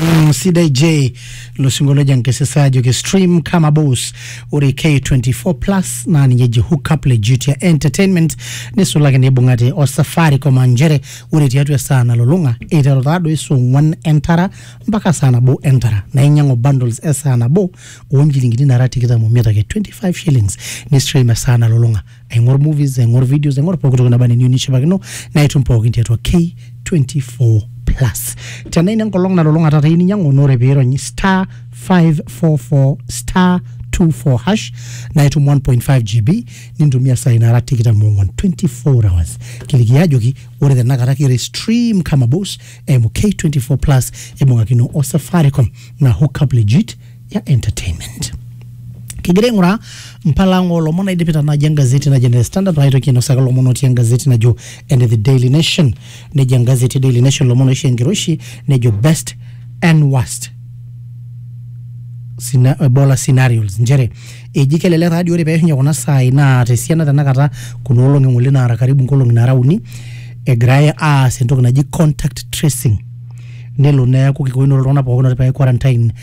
Mm, sidai j losingolioja nkesesajo ke stream kama boss ore k24 plus naa ninye eji hookup le duty entertainment nisulaki neibung'ate o safaricom aa nchere ore tiatua esaa nalulung'a eiteru taadoi saa ong'uan entara mpaka saa nabo entara naa inyang'u bundles esaa nabo oonchilingini nara tikitam omiet ake 25 shillings nistream esaa nalulung'a aing'or movies aing'or videos aing'or pooki toki naba neniyieu nishipakino naitum pookin tiatua k24 plus tenaa ina enkolong nalulung'a taata iyieu ninyiang'u naa ore piirony star 544 star 24 hash naitum 1.5 gb nintumia sai nara tikitam ong'wan 24 hours kiliki ajoki ore tenakata kira stream kama boss eimu k24 plus ibung'akino o safaricom na hookup legit ya entertainment kigira aing'uraa mpalang oolomon naidipita naaji engazeti naji ene standard paitoki ainosaki ilomon otii engazeti najo ene the daily nation nejo engazeti e daily nation ilomon oisho enkiroshi nejo best and worst Sina- ebola scenarios nchere eji kelelek taadi ore peishunye kuna saai naa tesiana tenakata kuna olong'i ng'ole naara karibu nkolong'i naara uni egirae aas entoki naji contact tracing nelo neeku kikoinore iltung'anak pookin otipa quarantine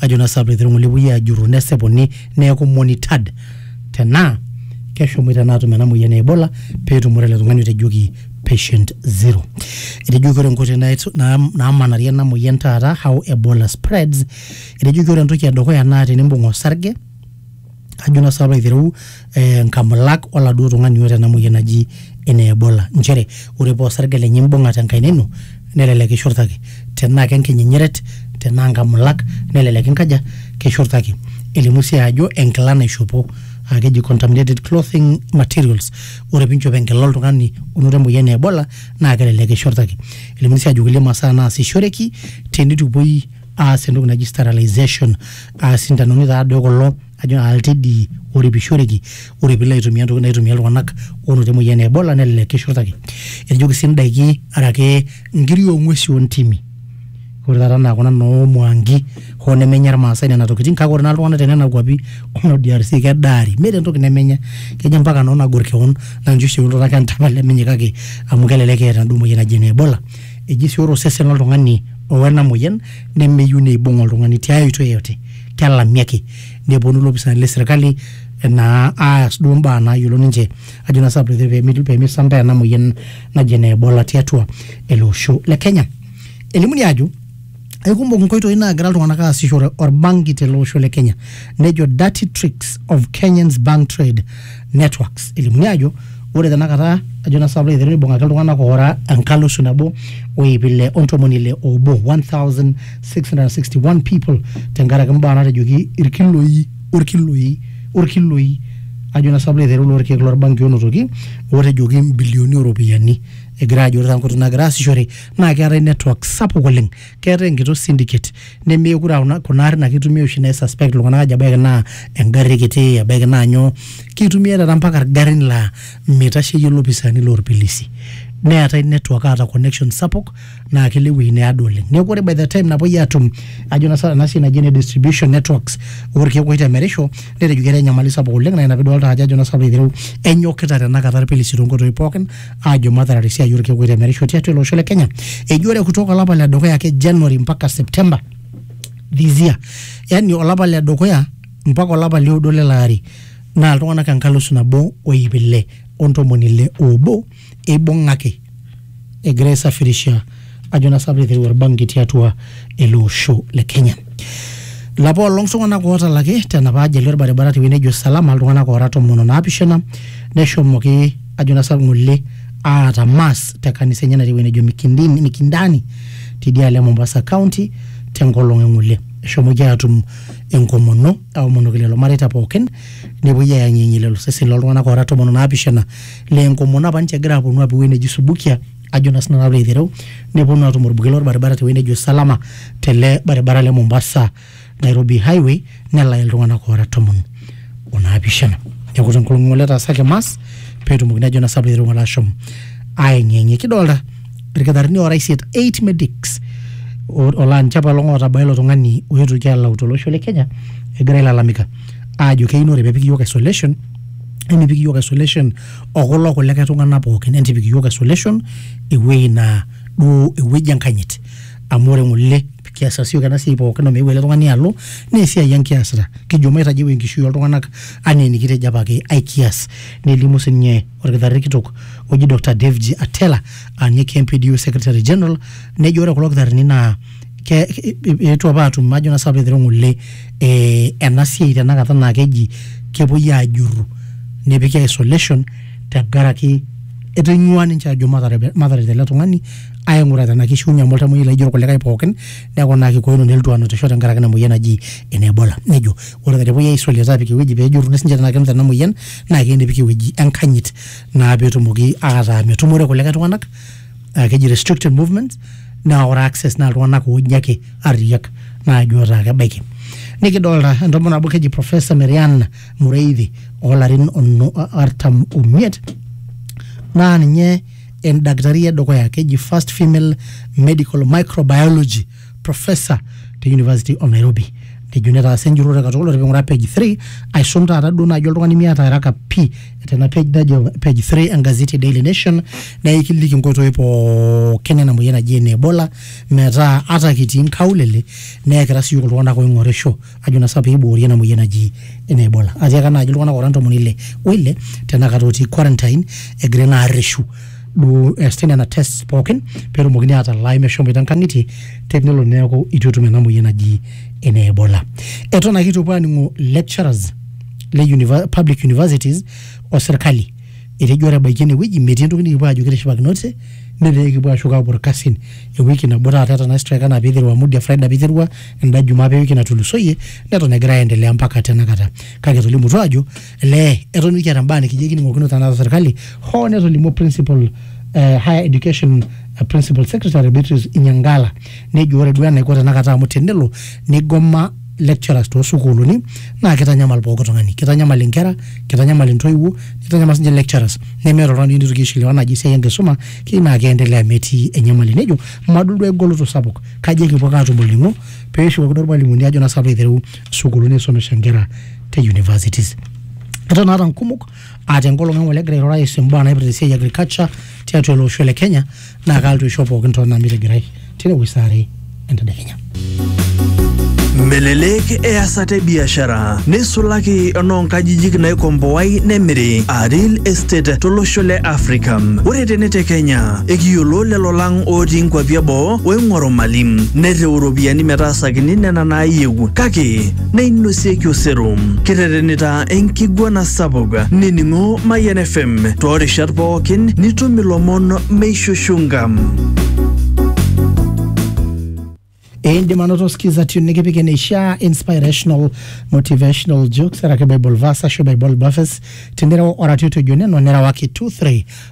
ajo naa sababu etii irng'ole epuoi ajurru nesipuni neeku monitored tenaa keshomoita naa atum ena moyian e Ebola peetumore ele tung'ani otejoki patient zero. Etejoki ore nkoitoi nait- naam- naamanarie ena moyian taata how Ebola spreads, etejoki ore entoki edukuya naa tenimbung' osarge ajo naa sapa aitereu eh, nkamulak oladuo tung'ani oota ena moyian naji ene ebola nchere ore paa osarge lenye imbung'a tenkaina ino nelelek kishurtaki tenaa kenkinyinyeret tenaa nkamulak nelelek inkaja kishurtaki elimu sii ajo enkila naishopo aa keji contaminated clothing materials ore pinchop enkila oltung'ani onoto emoyian e ebola naa kelelek kishurtaki elimuni sii ajo kulie masaa naasishoreki tenitupuoi aas entoki naji sterilization aa sintanoni taadoi kulo ajo aa iltedii oripishoreki ore piilo aitumia ntokitin naitumia iltung'anak oonotito emoyian e ebola nelelek kishurtaki etojoki sii indaiki araki inkiri ong'uesi ontimi ore taata enaa kuna noo mwangi hoo nemenya irmaasai nena tokitin kake ore naa iltung'anak tenena kuapi ono DRC kedaari meeta entoki nemenya kejo ampaka noo nagor kewon naa ninche oshi eun iltung'anak entama lemenyae kake amu kelelek eeta enaduo moyian naji ene ebola eji sii ore osesen loltung'ani o ena moyian nemeyieu neibung oltung'ani tiai oitoi yeyote kelami ake neponu ilopisani le sirkali naa aas duo imbaa naayiolo ninche ajo naa sababu pee miti- pee misambaa ena moyian naji ene ebola tiatua ele osho le kenya elimuni ajo aikumok inkoitoi naagira iltung'anak aasishore orbanki tele osho le kenya nejo dirty tricks of kenyans bank trade networks elimuni ajo ore tenakata ajo na saplo aiteru nibung'aki iltung'anak oora enkalisu nabo o iip ile o ntomoni ile obo 1661 people tenkaraki mbaa natejoki irkiloi orkiloi orkiloi ajo na saplo aiteru lorkeek lorbanki onotoki otejoki mbilioni oropiyiani egira ajo ore taa nkoitoi nagira aasishore naa keetae network sapuk oleng keetae enkito syndicate nemeekure aa kuna- kuna arrin ake itumia oshi nai suspect iltung'anak ajo ebaiki naa engarri kiti ebaiki naa nyoo kitumia taata mpaka irgarrin laa mitasheyie ilopisaani lorpilisi neetae network aata connection sapuk naa kelo ewueji neado oleng neeku ore by the time napuoi atum ajo na sa- ena siai naji ene distribution networks orkeek oitemerisho netejo ketaa enyamali sapuk oleng naa ina piidolta ajo ajo na sa piilo aitereu enyokita tenakata irpilisi tonkoitoi pookin aajo matarare esiai orkeek oitemerisho tiatua ele osho le Kenya. Eji ore kutoka olapa le dukuya ake January mpaka September this year, yani olapa le dukuya mpaka olapa le oudo lele ari naa iltung'anak enkalisu nabo o iip ile o ntomoni ile oobo eibung'aki egira aisafirisha ajo naa sapuk eiteru orbanki tiatua ele osho le Kenya. Lapa olong iltung'anak ootalaki tenapa ajali orbaribara tewueji nejo Salama iltung'anak oora tomon o naapishana neshomoki ajo naa sapuk ng'ole aata mass te kanisa enye natii ewueji nejo Mikindini, Mikindani tidialo e Mombasa County tenkolong e ng'ole. Eshomoki aatum enkomono aomonoki lelo mareita pookin nepuoi ayang'iyang'ie lelo seseni loltung'anak oora tomon o naapishana laa enkomono apa ninche egira aaponu aapuo ewueji neji Subukia ajo naa sinanu alo aitereu neponu atum orbuket lorbaribara tewueji nejo salama tele baribara le mombasa nairobi highway nelaya iltung'anak oora tomon onaapishana neeku tenkolong ng'ole etaasaki mas peetumokini ajo naa sinanu alo aitereu ng'ole ashom aeng'eng'e kidolta irkitarrini oora isiet eight medics o- olaa ninche apaelong ootabaa ilo tung'ani oetuoki alau tolosho le kenya egira ailalamika aajo keyieu naa ore pepiki iyiok isolation nemepiki iyiok isolation okulo kulikae tung'anak pookin entipik iyiook isolation ewueji naa duo ewueji enkanyit amu ore ng'ole kiasita siyiok ena siai pookin omeeu ele tung'ani alo naa esiai ang kiasita kijo maitajeu enkishui oltung'anak anaa enikitejo apake aikias nelimu sininye orkitarri kitok oji Dr. David Atela aa ninye KMPDU secretary general nejo ore kulo kitarrini naa ke- ke- eetuo apa atum ajo naa sinanu piilo aitereu ng'ole eh, ena siai tenakata naa keji kepuoi ajurru nepiki isolation tenkaraki etonyua ninche ajo matarep mataret ele tung'ani aing'ura tenaa kishiunye amu oltamoyiai laijo irkulikae pookin neeku naa kikoino nelotu anotisho tenkaraki ina moyian naji ene ebola nejo ore ake tenepuoi ae isolate apik ewueji pejurruni sinche tenaa kenuta ena moyian naa keyieu nepiki ewueji enkanyit naa petumoki ataa metumore kulikae tung'anak ah, keji restricted movements naa ore access naa iltung'anak ooji ake arriyiak naaji otaa kebaiki nikidolta entomononi nabo keji professor Marian Mureithi oolarin ono- artam omiet naa ninye endakitari edukuya keji first female medical microbiology professor te university of nairobi nejo netaasa enjurrore katukul ore ping'uraa page 3 aisum taata duo naaji oltung'ani miata haraka pii tena page najo page 3 engazeti e daily nation naikiliki inkoitoi pookin ena moyian naji ene ebola metaa ata kitii inkaulele neekira siyiok iltung'anak oing'orisho ajo na sa peiboori ena moyian naji ene ebola atiaka naaji iltung'anak ora ntomoni ile oile tenakata otii quarantine egira naa arreshu duo eesita nena tests pookin peetumokini atalaa meshomoita nkang'itie tenelo neeku itu etum ena moyian naji ene ebola eton ake itu epuo aning'o lecturers le univer public universities o serkali Etejo ore ebaiki enewueji metii entoki nikipuo ajo kitishipakinote netaa ekipuo ashuk apuo irkasin. Ewiki nabo taata etana strike anaa peiteru amu dia Friday apa eiterua enda jumaa apa ewiki natulusoyie neton egira aendelea mpaka tenakata. Kake etolimutuo aajo elee eton mikiata imbaa nikijo ekining'okino tenakata serkali hoo netolimuo principal eh, higher education principal secretary Beatrice Inyangala nejo ore duo enaiko tenakata amu tenelo neigoma lecturers toosukuuluni naa kitanyamal pooki tung'ani kitanyamal inkera kitanyamal intoiwuo nitanyamal sinche lecturers nemeeta oltung'ani nitoki aishiliwa naaji esiai enkisuma keyieu naa keendelea metii enyamali nejo madol duo egoloto sapuk kaji ekipuo ake atum olning'o peshukokino irmalimuni ajo naa sapa aiteru sukuuluni aisomesha inkera te universities eton naata nkumok aa tenkolong eng'ole egira airura aihusu imbaa naipirta esiai e agriculture tiatua ele osho le kenya naa kaaltu aisho pookin too nami tigirai tine wueji saa are entedekenya. Melelek easata e biashara neisulaki enoonkajijik naikomboai nemiri aa real estate tolosho le Africa. Ore tene te Kenya ekiyiolo lelo lang otii nkwapi eboo oing'oru mali nereu iropiyiani metaasakini nena naayieu kake neinosieki osero. Kiterenita enkiguana sapuk nining'o Mayian FM toorishat pookin nitum ilomon meishushunga. indim anoto skiza tune nikipik eneishaa inspirational motivational jokes araki bible verse ashu bible verses tinireu oratioti ojo neno nirewaki 23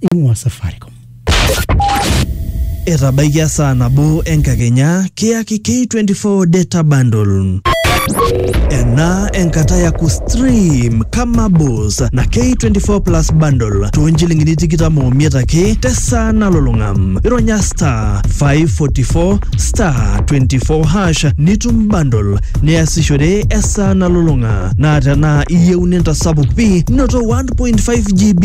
ing'ua Safaricom. Etabaikia saa nabo enkakenya kiyaki K24 data bundle. Ena enkata ya kustream kama bos na K24 plus bundle too nchilingini tikitam omiet ake tesaa nalulung'a. Ironya star 544 star 24 hash nitum bundle niasishore esaa nalulung'a. Naa tenaa iyieu nintasapuk pi noto 1.5 GB